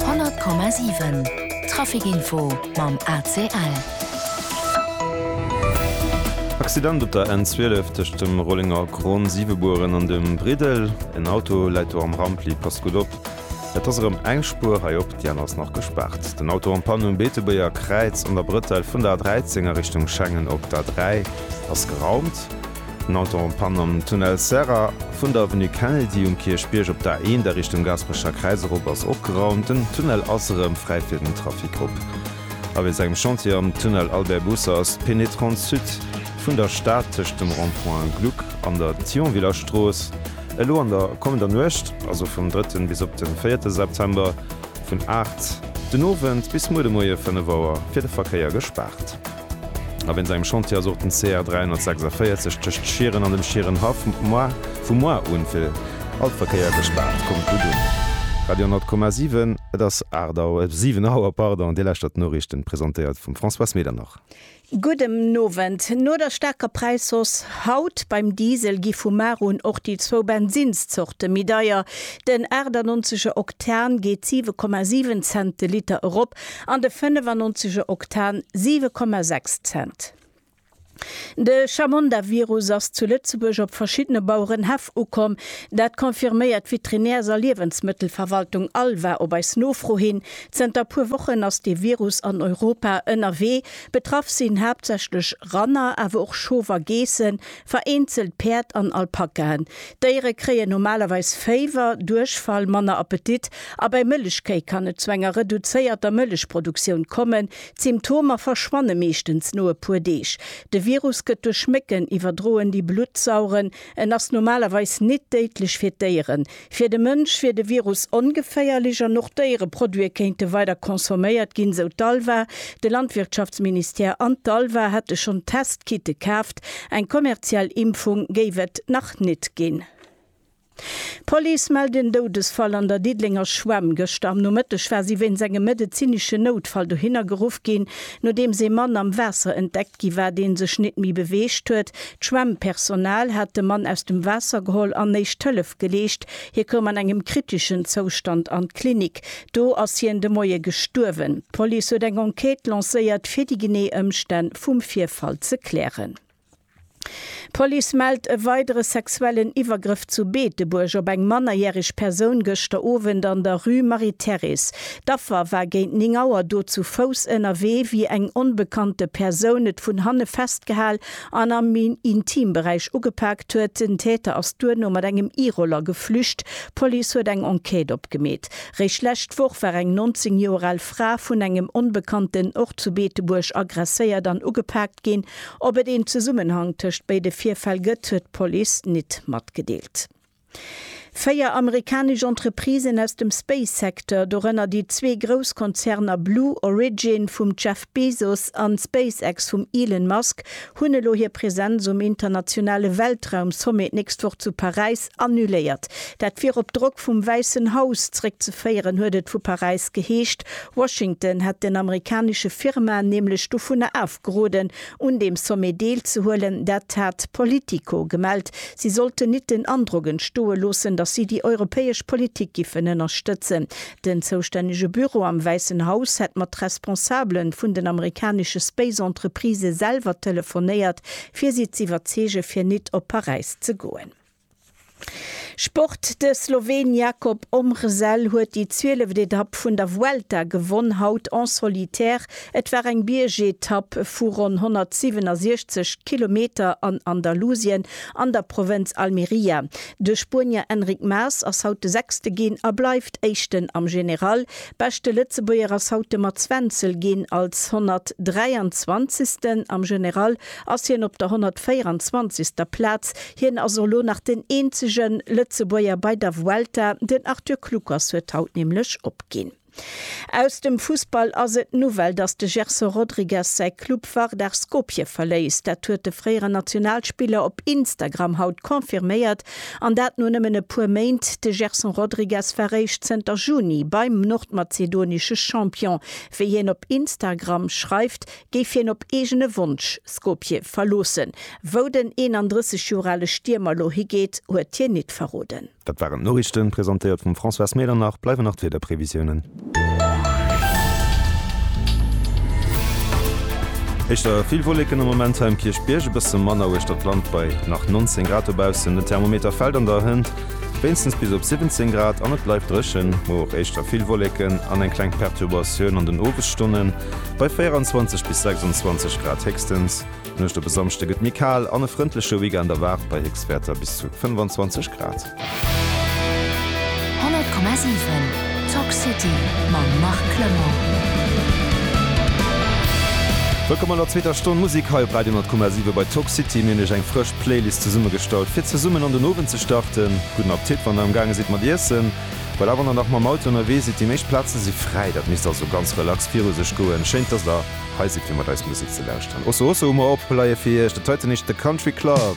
100,7 Trafic Info mam ACL. Accident op der N12 tëscht dem Rollenger Kron Siwebueren an dem Briddel. En Auto läit do am Rampli. Passt gutt op, et ass erëm eng Spuer hei op, déi aner ass nach gespaart. Den Auto am Panne um Beetebuerger Kräiz an der Brëtell vun der A13 a Richtung Schengen op der A3 ass geraumt. Nonton Pann am Tunnel Serra. Vun der Avenue Kennedy um Kierchbierg op d'A1 a Richtung Gaasperecher Kräiz erop ass opgeraumt. Den Tunnel ass erëm fräi fir den Trafic. Op a weess engem Chantier am Tunnel Albert Busse ass d'Penetrante Sud vun der Stad tëscht dem Rond-point Gluck an der Thionviller Strooss elo an der kommender Nuecht, also vum drëtten bis op de véierte September, vun aacht den Owend bis muer de Moie fënnef Auer fir de Verkéier gespaart. A wéinst engem Chantier ass och den CR 346 tëscht Schieren an dem Schierenhaff vum Moar un fir all Verkéier gespaart. Kommt gutt un! Radio 10,7 Et ass 8 Auer, 7 Auer, pardon. Dir lauschtert d'Noriichten, presentéiert vum Françoise Medernach. Gudden Owend. No der staarker Präishausse haut beim Diesel gi vu mar un och déi zwou Bensinszorte méi deier. Den 98 Oktan geet 7,7 Cent de Liter erop An de 95 e Oktan 7,6 Cent. De Chamonda-Virus ass zu Lëtzebuerg op verschiddene Bauerenhäff ukomm. Dat confirméiert d'Veterinärs a Liewensmëttelverwaltung Alva op eis Nofro hin. Zënter puer Wochen ass dee Virus an Europa ënnerwee. Betraff sinn haaptsächlech Ranner, awer och Schof a Geessen, Vereenzelt Päerd an Alpakaen. D'Déiere kréien normalerweis Féiwer, Duerchfall, manner Appetit a bei Mëllechkéi kann et zu enger reduzéierter Mëllechproduktioun kommen. D'Symptomer verschwanne meeschtens no e puer Deeg. De Virus gëtt duerch Mécken iwwerdroen, déi Blutt saugen. En ass normalerweis nit déidlech fir d'Déieren. Fir de Mënsch wier de Virus ongeféierlech an och Déiereproduite kéinte weider consomméiert ginn, sou d'ALVA. De Landwirtschaftsministère an d'ALVA hätte schonn Test-Kitte kaaft. Eng kommerziell Impfung géif et nach net ginn. D'Police mellt en Doudesfall an der Diddelenger Schwämm. Gëschter am Nomëtteg war si wéinst engem medezineschen Noutfall dohinner geruff ginn, nodeems ee Mann am Waasser entdeckt Gi war, dee sech nit méi beweegt huet. D'Schwemmpersonal hat de Mann aus dem Waasser geholl an éischt Hëllef geleescht. Hie koum an engem kriteschen Zoustand an d'Klinik. Do ass hien de Moie gestuerwen. D'Police huet eng Enquête lancéiert, fir déi genee Ëmstänn vum Virfall ze klären. D'Police mellt e weidere sexuellen Iwwergrëff zu Beetebuerg op eng mannerjäreg Persoun gëschter Owend an der Rue Marie-Thérèse. D'Affer war géint 9 Auer do zu Fouss ënnerwee, wéi eng onbekannte Persoun et vun hanne festgehal an am Intimberäich ugepaakt huet. Den Täter ass duerno mat engem E-Roller geflücht. D'Police huet eng Enquête opgemeet. Réischt d'lescht Woch war eng 19 Joer al Fra vun engem Onbekannten och zu Beetebuerg aggresséiert an ugepaakt ginn. Ob et een Zesummenhang tëscht béide Virfäll gëtt, huet d'Police nit matgedeelt. Véier amerikanesch Entreprisen aus dem Space-Secteur, dorënner déi zwee grouss Konzerner Blue Origin vum Jeff Bezos an SpaceX vum Elon Musk, hunn elo hir Presenz um internationale Weltraum-Sommet d'nächst Woch zu Paräis annuléiert. Dat wier op Drock vum Wäissen Haus zeréckzeféieren, huet et vu Paräis geheescht. Washington hätt den amerikanesche Firmaen nämlech dovunner D'Groden un deem Sommet deel ze huelen, dat hat Politico gemellt. Si sollten nit den Androck entstoe loossen, datt si déi europäesch Politik giffen ënnerstëtzen. Den zoustännege Büro am Wäissen Haus hätt mat Responsabele vun den amerikanesche Space-Entreprisë selwer telefonéiert, fir si z'iwwerzeege fir nit op Paräis ze goen. Sport, De Sloween Jakob Ombrzell huet déi zwieleft Etapp vun der Vuelta gewonn, haut en solitaire. Et war eng Biergetapp vu ronn 167 Kilometer an Andalusien an der Provënz Almeria. De Spuenier Enric Mas ass haut de Sechste ginn a bleift Éischten am General. Beschte Lëtzebuerger ass haut de Mats Wenzel ginn als 123. Am General ass hien op der 124. Plaz. Hien ass elo nach den eenzege Lëtzebuerger bei der Vuelta. Den Arthur Kluckers huet haut nämlech opginn. Aus dem Fussball ass et d'Nouvelle, datt de Gerson Rodrigues säi Club Vardar Skopje verléisst. Dat huet de fréieren Nationalspiller op Instagram haut confirméiert, an dat no nëmmen e puer Méint. De Gerson Rodrigues war réischt zënter Juni beim nordmazedonesche Champion. Wéi hien op Instagram schreift, géif hien op eegene Wonsch Skopje verloossen. Wou den 31 Joer ale Stiermer lo higeet, huet hien nit verroden. Dat waren d'Noriichten, presentéiert vum Françoise Medernach. Bleiwen nach d'Wiederprevisiounen. Éischter vill Wolleken am Moment hei um Kierchbierg, e bësse manner uechter d'Land bei nach 19 Grad dobaussen. Den Thermometer fält an der Hënt wéinstens bis op 17 Grad an et bleift dréchen. Muer och éischter vill Wolleken an eng kleng Perturbatioun an den Owesstonnen. Bei 24 bis 26 Grad héchstens. D'Nuecht op e Samschde gëtt méi kal an e frëndleche Weekend erwaart bei Héchstwäerter bis zu 25 Grad. 100,7 Talk City mam Marc Clement. Wëllkomm an der zweeter Stonn Musek hei op Radio 100,7 bei Talk City. Mir hunn iech eng frësch Playlist zesummegestallt fir zesummen an den Owend ze starten. Gudden Apptit wann der am gaange sidd mat iessen. Voilà, wann der nach mam Auto ënnerwee sidd, déi meescht Plaze si fräi, dat misst also ganz relax viru sech goen. Schéin, dass der hei sidd fir mat eis Musek ze lauschteren. Osso Osso hu mer opgeleie fir iech, dat heiten heescht The Country Club.